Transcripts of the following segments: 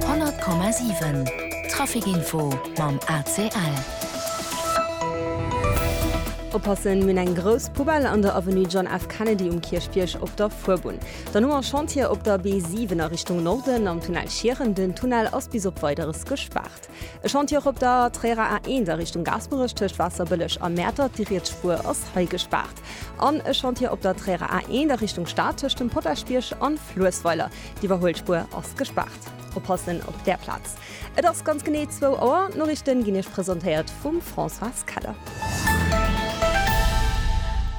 100,7 Traficinfo mam ACL. Oppassen, mir hunn eng grouss Poubelle an der Avenue John F. Kennedy um Kierchbierg op der Fuerbunn. Dann hu mer Chantier op der B7 a Richtung Norden am Tunnel Schieren. Den Tunnel ass bis op Weideres gespaart. E Chantier och op der Tréierer A1 a Richtung Gaasperech tëscht Waasserbëlleg a Mäertert. Déi riets Spuer ass hei gespaart. West an e Chantier op der Tréierer A1 a Richtung Stad tëscht dem Potaschbierg an Fluessweiler. D'Iwwerhuelspuer ass gespaart. Oppassen op där Plaz. Et ass ganz genee zwou Auer. D'Noriichten ginn Iech presentéiert vum Françoise Keller.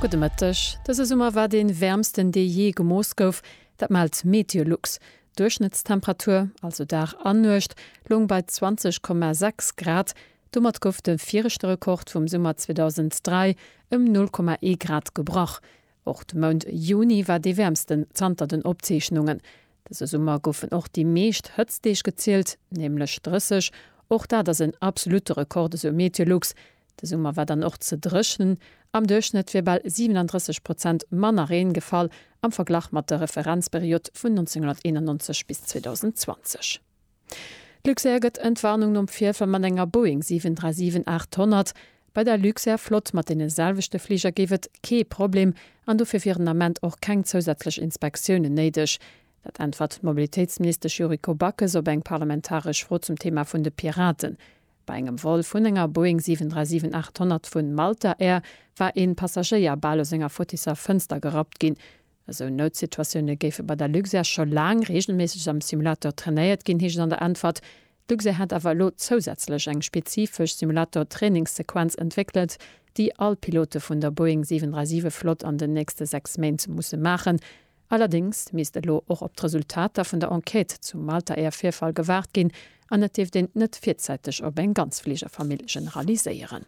Gudde Mëtteg. Dëse Summer war dee wäermsten dee jee gemooss gouf. Dat mellt Meteolux. D'Duerchschnëttstemperatur, also Dag an Nuecht, loung bei 20,6 Grad, domat gouf de viregte Rekord vum Summer 2003 ëm 0,1 Grad gebrach. Och de Mount Juni war dee wäermsten zanter den Opzeechnungen. Dëse Summer goufen och déi meescht Hëtztdeeg gezielt, nämlech 30, och dat ass en absolutte Rekord, esou MeteoLux. De Summer war dann och ze dréchnen, am Duerchschnëtt wier bal 37 Prozent manner Reen gefall am Verglach mat der Referenzperiod vun 1991 bis 2020. D'Luxair gëtt Entwarnung nom Virfall mat enger Boeing 737-800. Bei der Luxair-Flott mat deene selwechte Fliger géif et kee Problem an dofir wieren den Ament och keng zousätzlech Inspektiounen néideg. Dat äntwert d'Mobilitéitsministesch Yuriko Backes op eng parlamentaresch Fro zum Thema vun de Piraten. Bei engem Vol vun enger Boeing 737-800 vu Malta Air war ee Passagéier bal aus enger Fottisser Fënster gerappt ginn. Esou Noutsituatioune géife bei der Luxair scho laang reegelméisseg am Simulator trainéiert ginn, heescht et an der Äntwert. D'Luxair hätt awer elo zousätzlech eng spezifesch Simulator-Trainingssequenz entwéckelt, déi all Pilote vun der Boeing 737-Flott an den nächste sechs Méint musse maachen. Allerdéngs misst elo och op d'Resultater vun der Enquête zum Malta Air Virfall gewaart ginn an et dierft een net virzäiteg op eng ganz Fligerfamill generaliséieren.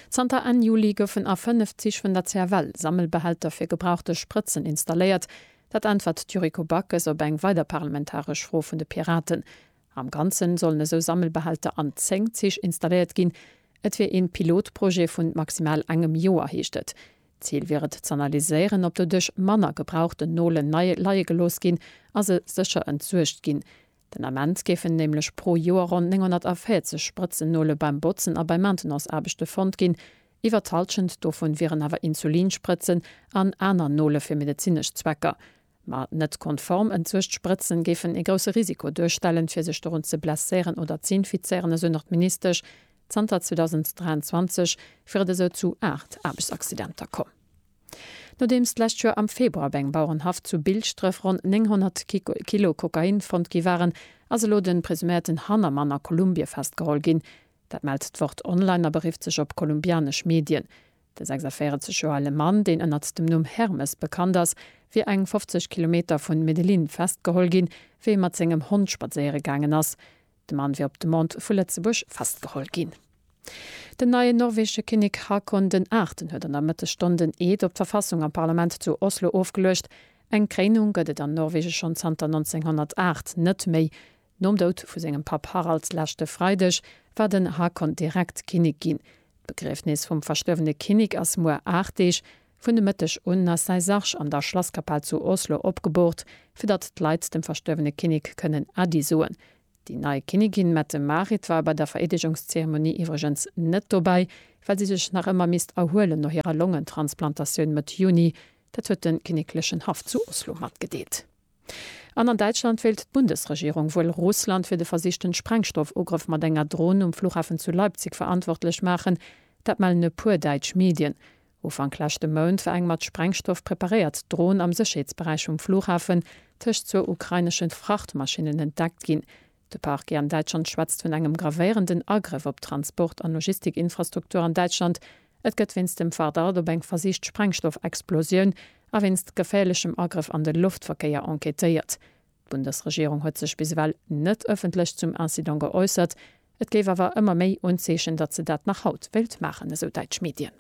Zanter Enn Juli goufen a fënnef Zich vun der CFL Sammelbehälter fir gebrauchte Sprëtzen installéiert. Dat äntwert d'Yuriko Backes op eng weider parlamentaresch Fro vun de Piraten. Am Ganzen sollen esou Sammelbehälter an 10 Zich installéiert ginn. Et wier ee Pilotprojet vu maximal engem Joer, heescht et. D'Zil wier et z'analyséieren, ob doduerch manner gebrauchten Nolen nei leie gelooss ginn a se sécher entsuergt ginn. Den Ament géifen nämlech pro Joer ronn 940 Sprëtzennole beim Botzen a bei Maintenanceaarbechte fonnt ginn. Iwwer d'Hallschent dovun wieren awer Insulinsprëtzen an aner Nole fir medezinesch Zwecker. Ma net konform entsuecht Sprëtzen géifen ee grousse Risiko duerstellen, fir sech dorun ze blesséieren oder ze infizéieren, esou nach d'Ministesch. Zanter 2023 wier et esou zu 8 Aarbechtsaccidenter komm. Nodeems d'lescht Joer am Februar op engem Bauerenhaff zu Bilschdref ronn 900 Kilo Kokain fonnt gi waren, ass elo de presuméierten Hannermann a Kolumbie festgeholl ginn. Dat mellt d'Wort Online a berifft sech op kolumbianesch Medien. De 46 Joer ale Mann, deen ënnert dem Numm Hermes bekannt ass, wier eng 50 Kilometer vun Medellin festgeholl ginn, wéi e mat sengem Hond spadséiere gaangen ass. De Mann wier op Demande vu Lëtzebuerg festgeholl ginn. Den neien norwegesche Kinnek Haakon den Aachten huet an der Mëttesstonn den Eed op d'Verfassung am Parlament zu Oslo ofgeluecht. Eng Kréinung gëtt et an Norwege schonn zanter 1908 net méi. Nom Doud vu sengem Papp Harald leschte Freideg war den Haakon direkt Kinnek ginn. D'Begriefnis vum verstuerwene Kinnek ass muer 8 Deeg. Vun de Mëtteg un ass säi Sarg an der Schlasskapell zu Oslo opgeboort, fir datt d'Leit dem verstuerwene Kinnek kënnen Äddi soen. Déi nei Kinnigin Mette-Marit war bei der Vereedegungszeremonie iwwregens net dobäi, well si sech nach ëmmer misst erhuelen no hirer Longentransplantatioun Mëtt Juni. Dat huet de kinneklechen Haff zu Oslo matgedeelt. An an Däitschland wéilt d'Bundesregierung wuel Russland fir de versichten Sprengstoffugrëff mat enger Dron um Flughafen zu Leipzig verantwortlech maachen. Dat mellen e puer däitsch Medien. Ufank leschte Mount war eng mat Sprengstoff preparéiert Dron am Sécherheetsberäich vum Flughafen tëscht zwou ukrainesche Frachtmaschinnen entdeckt ginn. De Parquet an Däitschland schwätzt vun engem gravéierenden Agrëff op d'Transport an Logistikinfrastruktur an Däitschland. Et gëtt wéinst dem Vardart op eng versicht Sprengstoffexplosioun a wéinst geféierlechem Agrëff an de Loftverkéier enquêtéiert. D'Bundesregierung huet sech bis ewell net ëffentlech zum Incident geäussert. Et géif awer ëmmer méi Unzeechen, datt se dat nach haut wéilt maachen, esou däitsch Medien.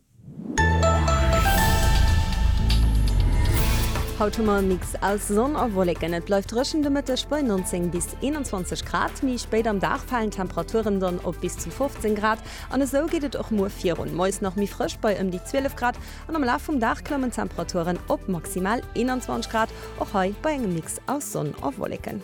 Haut hu mer e Mix aus Sonn a Wolleken. Et bleift dréchen de Mëtteg bei 19 bis 21 Grad. Méi spéit am Dag falen d'Temperaturen dann op bis zu 15 Grad. An esou geet et och muer virun, Moies nach méi frësch bei ëm déi 12 Grad an am Laf vum Dag klammen d'Temperaturen op maximal 21 Grad, och hei bei engem Mix aus Sonn a Wolleken.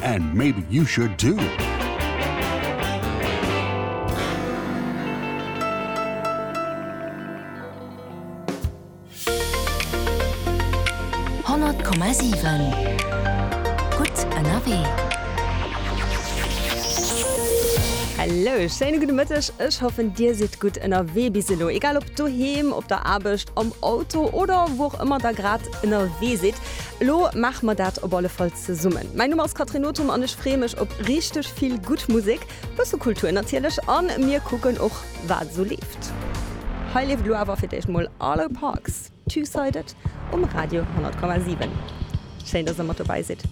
And maybe you should too! Hallo, schéine gudde Mëtteg, ech hoffen Dir sidd gutt ënnerwee bis elo. Egal op doheem, op der Aarbecht, am Auto oder wou och ëmmer der grad ënnerwee sidd, elo maache mer dat op alle Fall Zesummen. Mäin Numm ass Catherine Nothum an ech freeë mech op richteg vill gutt Musek, bësse Kultur natierlech a mir kucken och wat esou leeft. Hei leeft elo awer fir d'éischt mol Arlo Parks, Two-Sided um Radio 100,7. Schéin dass der mat dobäi sidd.